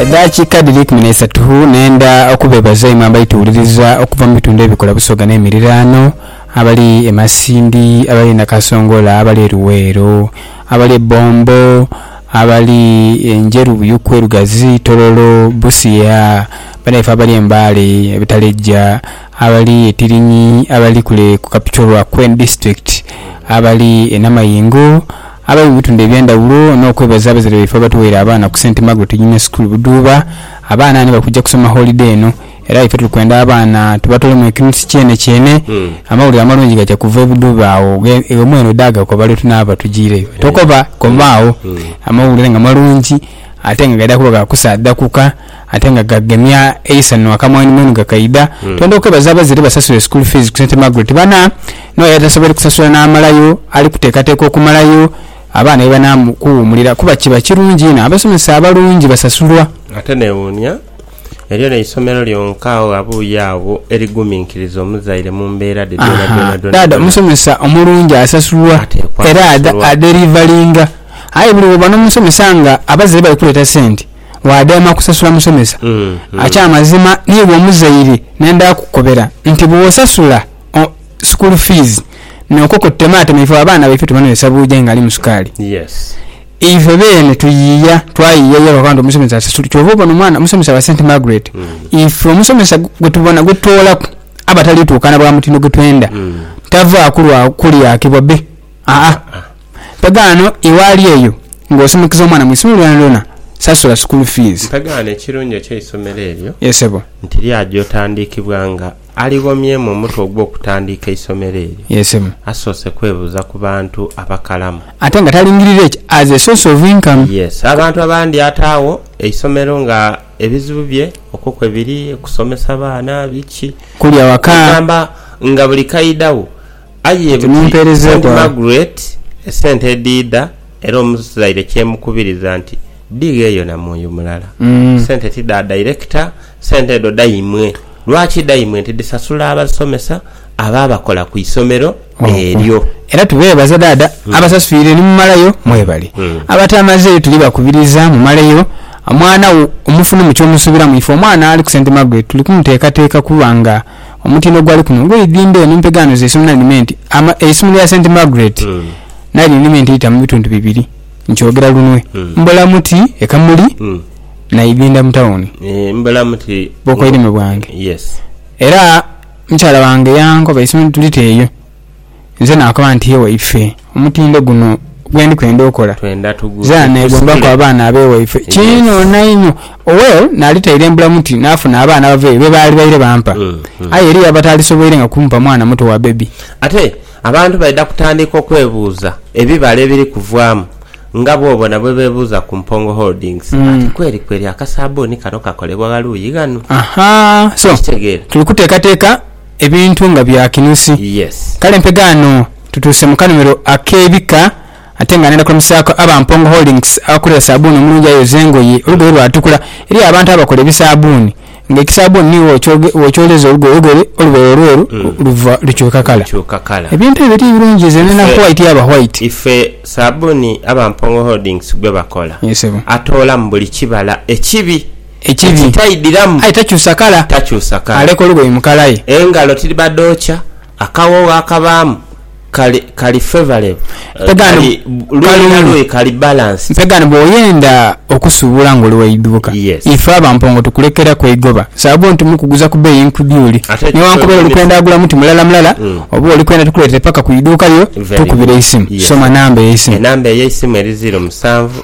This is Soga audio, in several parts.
Edhakiika dhiri ikumi n'eisatu nhendha okubeebaza imwe abaituwuliriza okuva mu bitundu ebikola Busoga n'emiriraano, abali e Masindi, abali e Nakasongola, abali e Luweero, abali e Bombo, abali e Njeru, Buyuku, e Lugazi, Tororo, Busia, banaife abali e Mbale, e Butaleja, abali e Tirinyi, abali kule ku Kapchorwa Queen District, abali e Namayingo, Abe mu bitundhu eby'endhaghulo n'okwebaza abazaire baife abatuweire abaana ku Saint Margaret Junior School Buduuba. Abaana ni bali kuja kusoma holide eno era ife tuli kwenda abaana tubatwalemu ekinusu kyenekyeene. Amawulire amalungi gaja kuva e Buduuba agho iwe mwene ode agakoba lwe tunaaba tujiireyo. Tokoba, komaagho. Amawulire nga malungi ate nga gaidha kuba ga kusaadhakuka ate nga gagemya eisanhu akamwenumwenu gakaidha, twendha okwebaza abazire basasule school fees ku St Margaret bana n'oyo atasobweire kusasula n'amalayo ali kuteekateeka okumalayo abaana ye banaamu kuwuumulira kuba kiba kirungi inho abasomesa abalungi basasulwa. Ate newuunya, elyo n'eisomero lyonka agho ghabuuye agho eriguminkiriza omuzaire mu mbeera dhe dhoona Ahaa, dhoona dhoona dhaadha dhoona. omusomesa omulungi asasulwa Ateekwa era adha kusasulwa. aderivalinga. Aye buli woba n'omusomesa nga abazire bali kuleeta sente waadema kusasula musomesa. Akyamazima niiwe omuzaire nenda kukukobera nti bwosasula school fees nokwo kututematema ife abaana baife tubanwesa buuja aye nga alimu sukaali. Ife beene tuyiiya twayiiya yooka akoba nti omusomesa asasule kyova obona omwana omusomesa wa Saint Margaret ife omusomesa gwetubona gwetutoolaku abatali tuukana bwa mutindo gwetwenda tavaaku lwa kulyakibwa be aa. Mpagaano iwe ali eyo nga osomokiza omwana mu isomero lyonalyona, sasula sukulu fiizi. Mpagaano ekirungi eky'eisomero eryo Ye sebo. nti lyaja otandiikibwa nga ali ghomyemu omutwe ogw'okutandiika eisomero eryo, Ye sebo. asoose kwebuuza ku bantu abakalamu. Ate nga talingirira ekyo as a source of income. Yes. Abantu abandi ataagho eisomero nga ebizibu bye okwo kwe biri, kusomesa baana, biki. Kulya waka. Kwegamba nga buli kaidha wo Aye buti St. Margaret esente edhiidha era omuzaire kyemukubiriza nti dhighe yo na mwoyo mulala. Sente ti dha director, sente edho dhaimwe. Lwaki dhaimwe nti dhisasula abasomesa abo abakola ku isomero eryo. Era tubeebaza dhaadha abasasuire ni mumalayo mwebali. Abatamazeeyo tuli bakubiriza mumaleyo omwana wo omufune mu kyomusuubiramu ife omwana ali ku St. Margaret tuli kumuteekateeka kuba nga Omutindo gwa liku luno gw'eidhimba eno mpegaano z'eisimu nalimenti ama eisimu lya St Margaret nalyo nalimenti eita mu bitundu bibiri nkyogera lunwe Mbolamuti e Kamuli na Idhinda mu tawuni bw'okoirime bwange era mukyala wange yankoba eisimu tulite eyo. Nze naakoba nti, Ye waife, omutindo guno gwe ndi kwenda okola, zira neegombaku abaana ab'ewaife kiinho nainho. Owell naali tairembula muti naafuna abaana abava eyo be baali baire bampa. Aye eriyo abataalisoboirenga kumpa mwana muto wa bebi. Ate abantu baidha kutandika okwebuuza ebibala ebiri kuvaamu nga bw'obona bwe beebuuza ku Mpongo Holdings ati, Kweri kweri akasaabbuni kano kakolebwa gha luuyi ghanu? Okitegeera? Tuli kuteekateeka ebintu nga bya kinusi. Kale mpegaano tutuuse mu kanhumiro ak'ebika ate nga ndhenda kulamusaaku aba Mpongo Holdings abakolera saabbuuni omulungi ayoza engoye olugoye lwatukula. Eriyo abantu abakola ebisabbuuni nga ekisabbuuni ni bwokyoleza olugoye, olugoye olubaire olweru luva lukyuka kala. Ebintu ebyo ti birungi nze ndhenda white yaba white. Ife saabbuuni aba Mpongo Holdings gwe bakola atoolamu buli kibala ekibi. Ekibi. Ekitaidhiramu. Aye takyusa kala. Takyusa kala. Aleka olugoye mu kala ye. Engalo tidhiba dhookya. Akawoogho akabaamu kali, kali favorable. Mpegano, kalungi. Luuyi na luuyi kali balanced. Mpegano, bw'oyenda okusuubula ng'oli wa idhuuka, ife Abampongo tukulekeraku eigoba. Saabwo nti mukuguza ku beeyi nkudyuli. Newankubera oli kwenda agula muti mulala mulala, oba oli kwenda tukuleetere paka ku idhuuka lyo, tukubire eisimu. Soma namba ey'eisimu. Enamba ey'eisimu eri ziiro musanvu.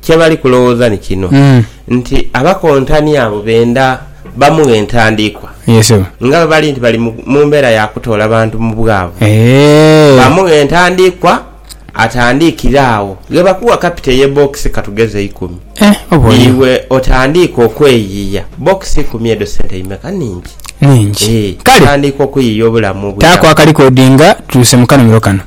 kye bali kulowooza ni kino nti abakontani abo benda bamughe ntandikwa nga bwe bali nti bali mu mbeera ya kutoola bantu mu bwavu. Bamughe entandikwa atandikire agho. Ghe bakuwa kapito eye bokisi ka tugeze ikumi, iwe otandiike okweyiiya. Bokisi ikumi edho sente imeka? Ningi. Otandiika okuyiiya obulamu obwira agho.